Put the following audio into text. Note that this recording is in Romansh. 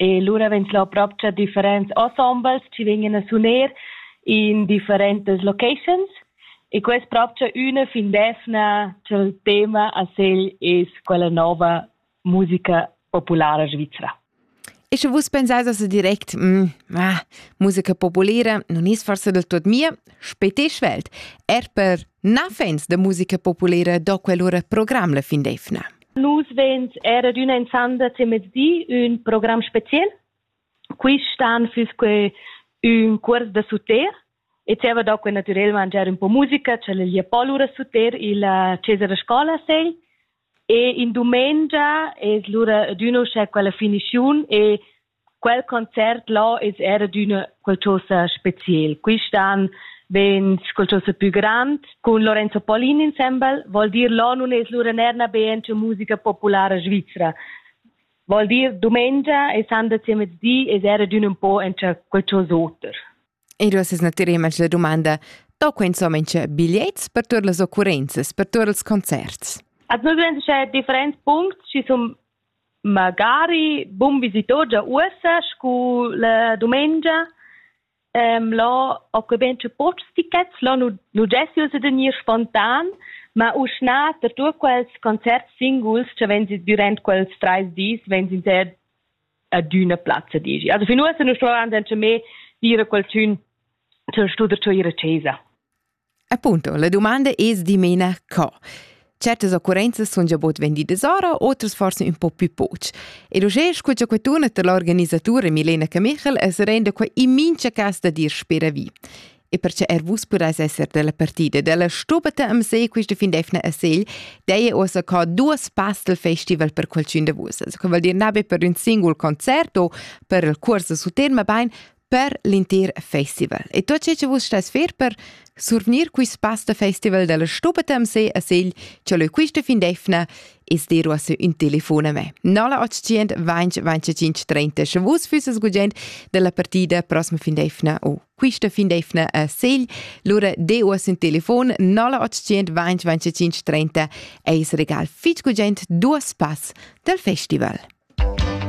E lura vegn slò propcha differents ensembles chi vegnan a suner in differentas locations e quest propcha üna fin d'eivna cha'l tema a segl es quella nouva musica populara svizra. E sche vus pensais a direct, mm, ah, musica populara non es forse del tot mia, spete svelt, er per na fans de musica populara do quell'ora program la fin d'eivna. Nus veins era d'ün enzanda temezdi ün program special. Quist an füss que ün cuors da suter e zieva do que natürel mangiar ün po musica, tschellöglia po lura suter illa chesa da scola segl e in dumengia es lura ad ün uschè quella finischiun e Quel concert là es era d'üna qualchosa speciel. Quist'an vegn qualchosa pü grand cun Lorenzo Paolin insembel, vol dir là nun es lura nerna bene cha musica populara svizra. Vol dir dumengia e sandersi a mezdi es era d'ün un po encha qualchosa oter. E duos es natir image la domanda, da quai insomma c'è bigliets per tuot las occurrenzas, per tuot ils concerts? At nu grenzischa differents puncts, schi sun Magari bun visitoggia uossa scu la dumengia. là ho que bain tü pochs tichets, là nu nu gesti ussa da gnir spontan, ma uschna per tuot quels concerts singuls cha vegns dürant quels trais dis vegns inter adüna plazza, dici. Also fin uossa nu stuvavan gnanca mê dire a qualchün ch'el stu der giò ir a chesa. Appunto, la domanda es dimena co. Certas occurrenzas sun già bod vendidas ora, otras forse un po' più poch. Ed uschè scu cha quettuna tar l'organisatura Milena Camichel es renda qua in mincha cas da dir spera vi. E perche er vus pudais esser della partida della stubata am se quista findefna a Segl, dei ossa ca duas pastel festival per qualcun de vus. Also, che vuol dir nabe per un singul concert o per il corso su terma bain, per l'intir festival. E tot ce che vus stais fer per survnir quist pass da festival della Stubetem se a Segl, ce leu quista fin defna, es dir uossa ün telefon a me. 0800 20 25 30 sche vus füsses gugent della partida prossima fin defna o quista fin defna a Segl, lura de uossa ün telefon 0800 20 25 30 eis regal fitg gugent duos pass del festival.